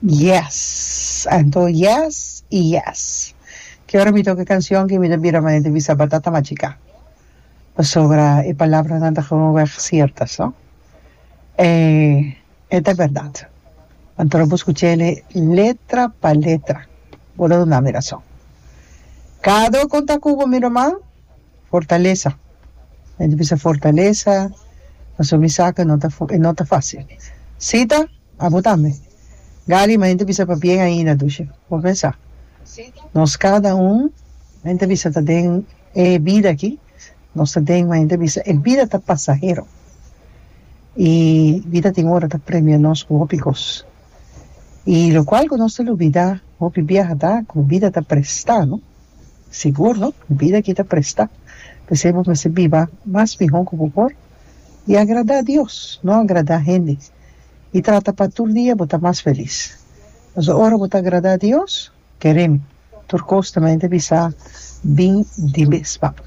Yes, anto yes y yes. Ki ora mi ta oki e cancion aki mi ta bira manera di bisa batata machica. Pasobra e palabranan ta geweg ciertas, no? E e ta berdad. Anto ora bo scucha ele letra pa letra bo ta duna mi razon. Cado con ta Cubo mi ruman? Fortalesa e ta bisa fortalesa pasobra mi sa ku e no ta e no ta fásil Sita abo tambe Gary mi ta bisa pa bien ainda dushi por pensa nos kada un mi ta bisa ta den e bida aki nos ta den mi ta bisa e bida ta pasahero y bida tin ora ta premia nos ku hopi kos y lokual ku nos ta lubida hopi biaha ta ku bida ta presta no. Sigur no, bida aki ta prestá, p'esei bo mester biba mas mihó ku bo por i agradá Dios, no agradá hende, i trata pa tur dia bo ta mas felis. Nos a ora bo ta agradá Dios, kerem tur kos ta mente bisa bin di mes pa bo.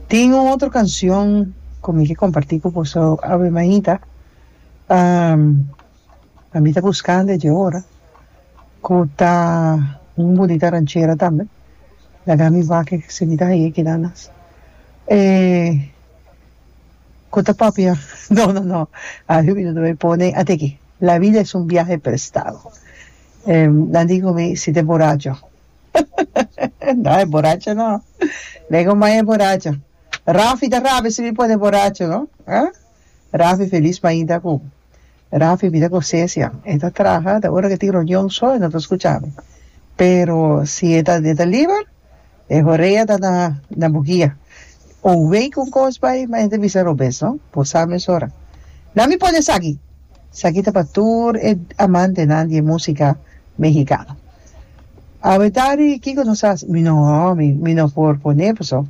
Tin un otro kansion ku mi ke kompartí ku bo so, Ave Maita. a mi ta buscando e dje ora cu ta un bonita ranchera tambe laga mi wak siquita heye keda nas e cu ta papia no no no ajo mi no ta pone ate aki la vida es un viaje prestado nan tin cu mi si ta boracho huhuhuhu no e boracho no me coma e boracho Rafi ta rabia si mi pone boracho no Rafi felis mainta cu Rafi bida cu Cecia. E ta traha, ta ora cu e tin reunion so e no ta scucha mi. Pero si e ta e ta liber, e horea ta na na bo guia. Un wey cu un cos bay, ma e ta bisa robes, no? Bo sa mesora. Nan mi pone esaki! Esaki ta pa tur e amantenan di e musica Mehicano. Awe tardi kico nos hasi? Mi no, mi no por pone pasobra.